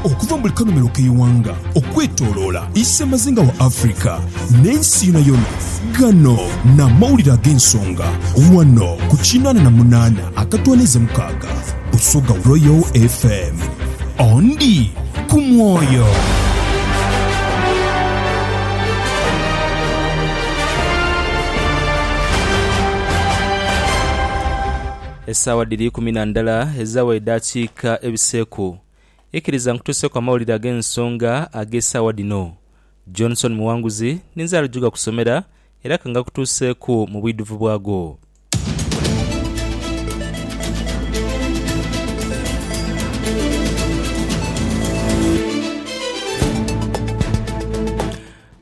Okuva mu buli kanhumilo k'eighanga okwetoloola isemazinga wa Africa n'ensi yonayona, ghano n'amawulire ag'ensonga ghano ku kinaana na munaana akatwaniiza mukaaga Busoga Royal FM. Ondi ku mwoyo. Esaawa dhiri ikumi na ndala ezawa edaakiika ebiseeku. Ikiriza nkutuuseku amawulire ag'ensonga ag'esaawa dhino. Johnson Muwanguzi ninze ali jugakusomera era ka ngakutuuseeku mu bwidhuvu bwago.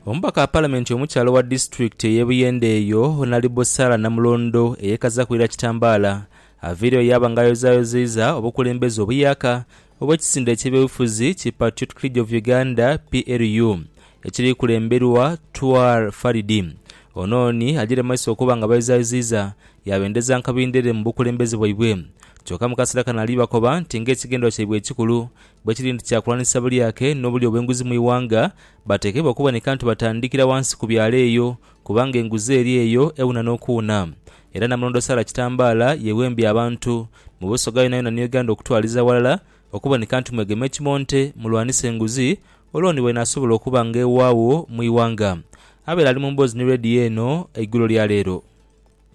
Omubaka wa Palamenti omukyala owa disitulikiti ey'e Buyende eyo, Honalibo Sarah Namulondo eyekazaku ira kitambaala, aviireyo yaaba nga ayozayozeiza obukulembeze obuyaaka obw'ekisinde eky'ebyobufuzi ki Patriotic League of Uganda, PLU, ekiri kulemberwa Twar Faridi. Ono ni ajiire mu maiso okuba nga abayozayozeiza yaabendeza nkabindhere mu bukulembeze bwaibwe kyoka mu kaseera kano ali bakoba nti ng'ekigendererwa kyaibwe ekikulu Bwe kiri nti kya kulwanisa bulyake n'obulya obw'enguzi mu ighanga, batekeibwa okuboneka nti batandikira ghansi ku byalo eyo, kubanga enguzi eri eyo ewuna n'okuwuna. Era Namulondo Sarah Kitambaala yeewembya abantu, mu Busoga yonayona ni Uganda okutwaliza ghalala, okuboneka nti mwegema ekimonte, mulwanise enguzi, olwo ni bw'enaasobola okuba nga ewaagho mu ighanga. Abaire ali mu mboozi ni leediyo eno eigulo lya leero.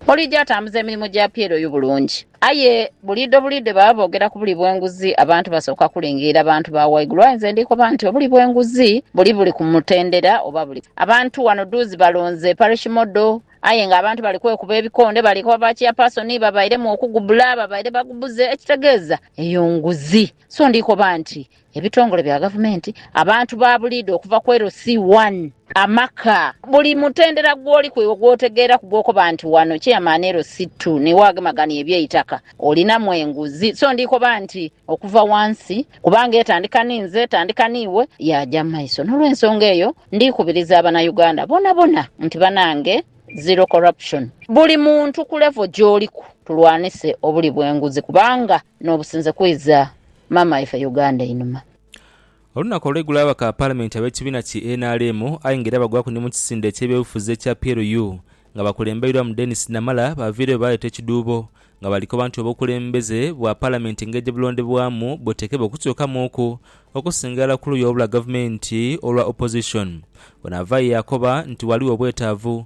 Olija atambuza emirimo gya Pieroy bulungi. Aye buliidho buliidho baba boogera ku buli bw'enguzi, abantu basooka kulingirira bantu ba waigulu. Aye nze ndi koba nti obuli bw'enguzi buli buli ku mutendera oba buli. Abantu wano dhuuzi balonze Parish Model aye nga abantu bali kwekuba ebikonde bali koba ba Chairperson babairemu okugubula babaire bagubuze ekitegeeza eyo nguzi. So ndi koba nti ebitongole bya gavumenti, abantu ba buliidho okuva ku LC one, amaka, buli mutendera gw'oli kwiwo gw'otegeeraku gw'okoba nti wano Chairman LC two ni w'agemagania eby'eitaka, olinamu enguzi. So ndi koba nti okuva wansi, kubanga etandika ni nze, etandika ni iwe, yaaja mu maiso. N'olwensonga eyo, ndi kubiriza Abanauganda bonabona nti banange Zero Corruption. Buli muntu ku level gy'oliku tulwanise obuli bw'enguzi kubanga n'obusinze kwiza Maama waife Uganda einhuma. Olunaku olweigulo ababaka ba palamenti abekibiina ki nrm aye nga era bagwaku ni mukisinde ekyebyobufuzi ekya PLU nga bakulembeirwa mu Denis Namala baviireyo baleeta ekidhuubo nga balikoba nti obukulembeze bwa palamenti ngeje bulondebwamu butekebwe okukyukamuuku okusinga irala kuluyi olwa gavumenti olwa opposition ono avaayo yakoba nti ghaligho obwetaavu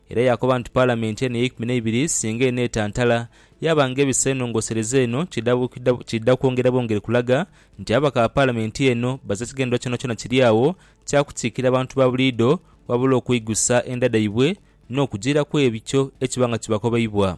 Era yaakoba nti Palamenti eno ey'eikumi n'eibiri singa eneetantala, yaaba ng'ebisa enongosereza eno ky'edha kwongera bwongere kulaga nti ababaka ba Palamenti eno baze kigendererwa kyonakyona kiri agho kya kukiikirira bantu ba buliidho wabula okweigusa enda dhaibwe n'okujiira kw'ebyo ekiba nga kibakobeibwa.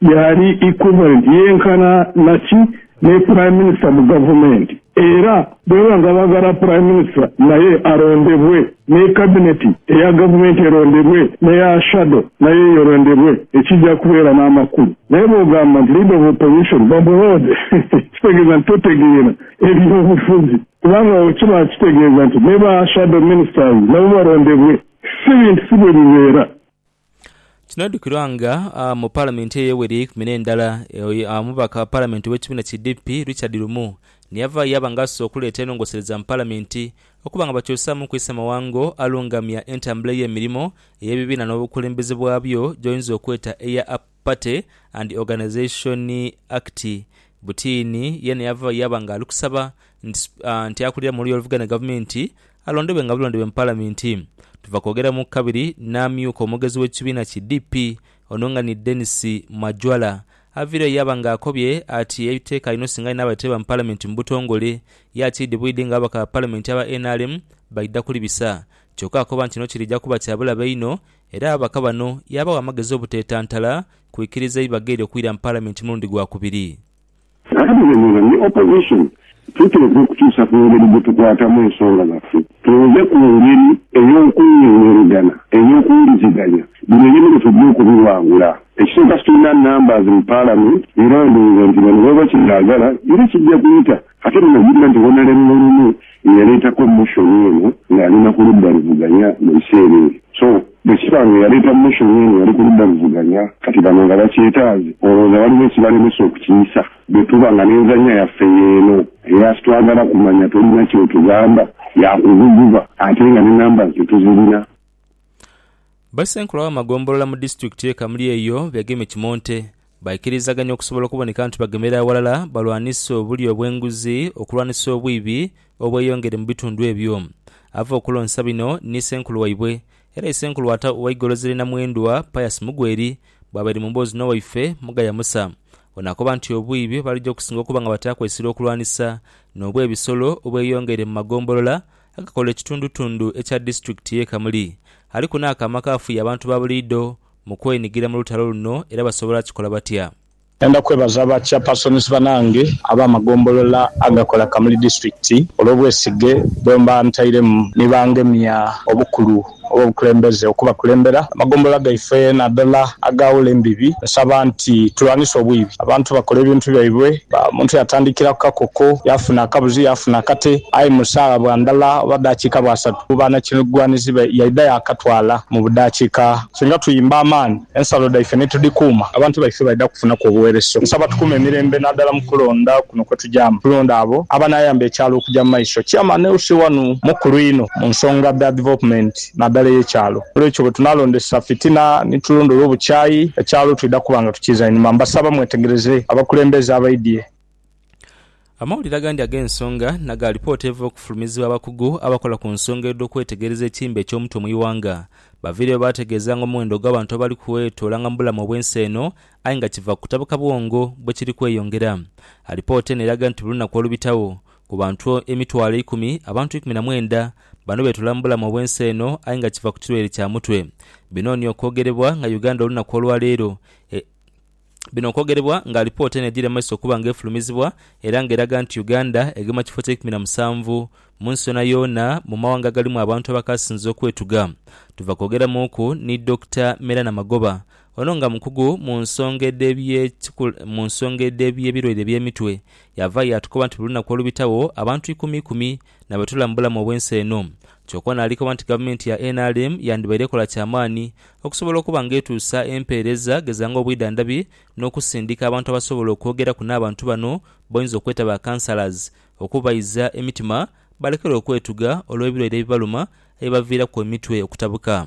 yaali equivalent, yenkana na ki, ne Prime Minister mu gavumenti era bwebaba nga baagala Prime Minister naye alondebwe, ne Cabinet eya gavumenti elondebwe, n'eya shadow nayo eyo elondebwe ekija kubeera n'amakulu. Naye bwogamba nti Leader of Opposition bamuloode kitegeeza nti totegeera ebyobufuzi kubanga awo kiba kitegeeza nti ne ba shadow ministers nabo balondebwe. Si bintu si bwebibeera. Kinoidhukirwa nga mu palamenti eyo eyeweri eyeikumi n'endala, omubaka wa palamenti ow'ekibiina ki DP Richard Lumu niyava yaba nga asoose okuleeta enhongosereza mu palamenti okuba nga bakyusaamu ku isemawanggo alungamya entambula ey'emirimo ey'ebibiina n'obukulembeze bwabyo gyoyinza okweta eya Party and Organisation Act, Butiini yeene yaava yaaba nga ali kusaba nti nti akulira mu luya oluvuga ni gavumenti alondebwe nga bulondebwe mu Palamenti. Tuva kwogera mu kabiri n'amyuka omwogezi w'ekibiina ki DP ono nga ni Denis Majwala aviireyo yaaba nga akobye ati ebiteeka inho singa aye n'abaire teeba mu Palamenti mu butongole ya kiidi bwidi nga ababaka ba Palamenti aba nrm baidha kulibisa. Kyoka akoba nti kino kiri ja kuba kya bulabe inho Era ababaka bano yaabawa amagezi obuteetantala kwikiriza eibagaerio kwira mu Palamenti mulundi gwa kubiri. N'abalemera ni Opposition, tuteekwa okukyusa ku ngeri gye tukwatamu ensonga zaffe tuve ku ngeri ey'okunyonyologana ey'okuwuliziganya. Bino ebyo nigo twidha okubiwangula. Ekisooka situlina numbers mu Palamenti era ndhooza nti bano baba bakibyagala era kijja kuyita. Ate muno ojukira nti Honale Mululume ye yaleetako motion eno ng'ali na ku ludda luvuganya mu biseera ebyo. So, bwe kiba nga eyaleeta motion eno yali ku ludda luvuganya, kati bano nga bakyetaaze, olowooza waliwo ekibalemesa okukiyisa? Bwe tuba nga n'enzannya yaffe y'eno era sitwagala kumanya tolina ky'otugamba, ya kuguguba ate nga ne numbers tetuzirina. Bassenkulu ab'amagombolola mu disitulikiti ye Kamuli eyo beegemye kimonte. Baikirizaganya okusobola okuboneka nti bagemera aghalala balwanise obulyo obw'enguzi okulwanisa obwibi obweyongedde mu bitundu ebyo. Ava okulonsa bino ni Ssenkulu waibwe era Isenkulu wa Ata owa Igolozi lye Namwendwa, Pius Mugweri bwabaire mu mboozi n'owaife Mugaya Musa. Ono akoba nti obwibi bwebali gya okusinga okuba nga bataakwesire okulwanisa n'obwebisolo obweyongedde mu magombolola agakola ekitundutundu ekya disitulikiti ye Kamuli aliku n'akaama akafuya abantu ba buliidho mu kwenhigira mu lutalo luno era basobola kikola batya? Ndenda kwebaza ba Chairpersons banange ab'amagombolola agakola Kamuli District olw'obwesige bwemba ntairemu ni bangemya obukulu Owobukulembeze okubakulembera amagombolola gaife nadala agaawula embibi, nsaba nti tulwanise obwibi. Abantu bakola ebintu byaibwe, omuntu yatandikira kukakoko, yaafuna akabuzi, yaafuna akate, aye mu saagha bwa ndala oba dakiika bwasatu, mu banakigwanizibe yaidha yaakatwala mu budakiika. Singa tuyimba amaani Ensalo dhaife ni tudhikuuma, abantu baife baidha kufunaku obuweereso. Nsaba tukuume emirembe nadala mu kulonda kuno kwe tujamu. Tulonde abo abanaayamba ekyalo okuja mu maiso. Chairman LC wanu mukulu inho mu nsonga dha development nadala ey'ekyalo. N'olwekyo bwe tunaalondesa fitina ni tulondoola obukyayi, ekyalo twidha kuba nga tukiiza inhuma. Mbasaba mwetegereze abakulembeze abaidhie. Amawulire agandi ag'ensonga na ga lipooti eva okufulumizibwa abakugu abakola ku nsonga edh'okwetegereza ekiimba eky'omutwe mu ighanga baviireyo baategeeza nga omuwendo ogw'abantu abali kwetoola-nga mu bulamu obw'ensi eno aye nga kiva ku kutabuka bwongo bwe kiri kweyongera. Alipoota eno eraga nti buli lunaku olubitagho, ku bantu emitwalo eikumi, abantu ikumi na mwenda bano betoola mu bulamu obw'ensi eno aye nga kiva ku kirwaire kya mutwe. Bino ni okwogerebwa nga Uganda olunaku olwaleero Bino okwogerebwa nga alipoota eno edhira mu maiso okuba nga efulumizibwa era nga eraga nti Uganda egema kifo kya ikumi na musanvu munsi yoonayoona mu mawanga agalimu abantu abakaasinze okwetuga. Tuva kwogeramuuku ni Dokita Merana Magoba ono nga mukugu mu nsonga edhebye mu nsonga edhebye birwaire ebyemitwe yavaayo yaatukoba nti buli lunaku olubitagho abantu ikumi ikumi na bwe tula mu bulamu obw'ensi eno. Kyokka ono ali koba nti Gavumenti ya nrm yandibaire ekola kya maani okusobola okuba nga etuusa empeereza geza ng'obwidhandhabi n'okusindika abantu abasobola okwogeraku n'abantu bano b'oyinza okweta ba counsellors okubayiza emitima balekere okwetuga olw'ebilwaire ebibaluma ebibaviiraku emitwe okutabuka.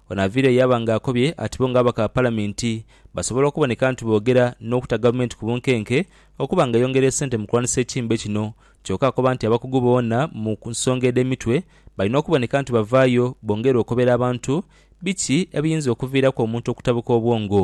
Ono aviire yaaba nga akobye ati bo nga ababaka ba Palaminti basobola okuboneka nti boogera n'okuta Gavumenti ku bunkenke okuba nga eyongera esente mu kulwanisa ekimbe kino kyoka akoba nti abakugu boona mu nsonga edh'emitwe balina okuboneka nti bavaayo bongere okobera abantu biki ebiyinza okuviiraku omuntu okutabuka obwongo.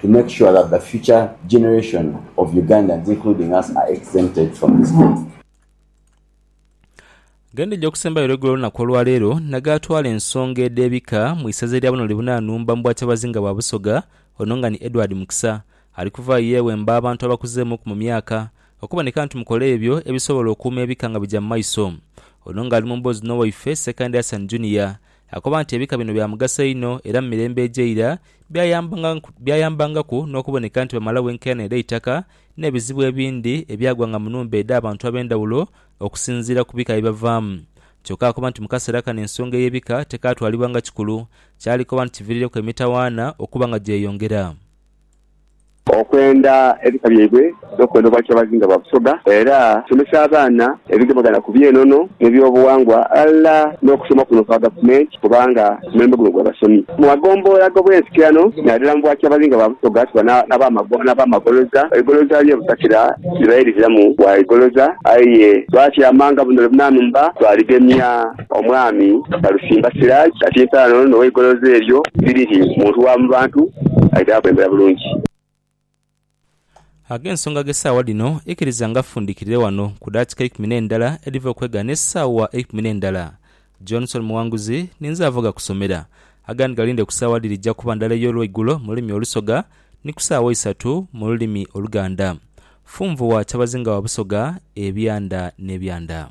to make sure that the future generation of Ugandans including us are exempted from this debt. Gendhije okusembayo olwegula olunaku olwaleero nagaatwala ensonga edh'ebika mu isaza erya buno libuna nhumba mu bwakyabazinga bwa Busoga ono nga ni Edward Mukisa ali kuvaayo yewemba abantu abakuzeemuuku mu myaka okuboneka nti mukola ebyo ebisobola okuuma ebika nga bigya mu maiso Ono nga ali mu mboozi n'owaife Ssekandi Hassan Junior Akoba nti ebika bino bya mugaso inho era mu mirembe egy'eira byayambangaku n'okuboneka nti bamalawo enkaayana edh'eitaka n'ebizibu ebindi ebyagwanga mu nhumba edh'abantu ab'endhawulo okusinziira ku bika bye bavaamu. Kyokka akoba nti mu kaseera kano ensonga ey'ebika tekaatwalibwa nga kikulu, kyali koba nti kiviirireku emitawaana okuba nga gyeyongera. Okwenda ebika byaibwe n'okwenda Obwakyabazinga bwa Busoga era tusomesa abaana ebigemagana ku by'enono n'ebyobuwangwa ghalala n'okusoma kuno kwa Gavumenti kubanga omulembe guno gwa basomi. Mu magombolola ag'obwensikirano nadala mu Bwakyabazinga bwa Busoga tuba n'abamagoloza eigoloza lye butakira libaire liziramu bwa igoloza aye lwaki amanga buno lwe bunanumba twaligemya. Omwami Balusimba Siraje ati entaano n'owa Igolozi eryo Sirihi muntu wa mu bantu ali dhaakulembera bulungi. Ag'ensonga gh'esaawa dhino ikiriza nga fundikirire wano ku daatika eikumi n'endala edhiva okwegha n'esaawa eikumi n'endala. Johnson Muwanguzi, Ninze avoga kusomera. Agandi galinde ku saawa dhiri dhija kuba ndala ey'olweigulo mu lulimi olusoga ni ku saawa isatu mu lulimi oluganda. Funvua Kyabazinga wa Busoga, Ebyanda n'ebyanda.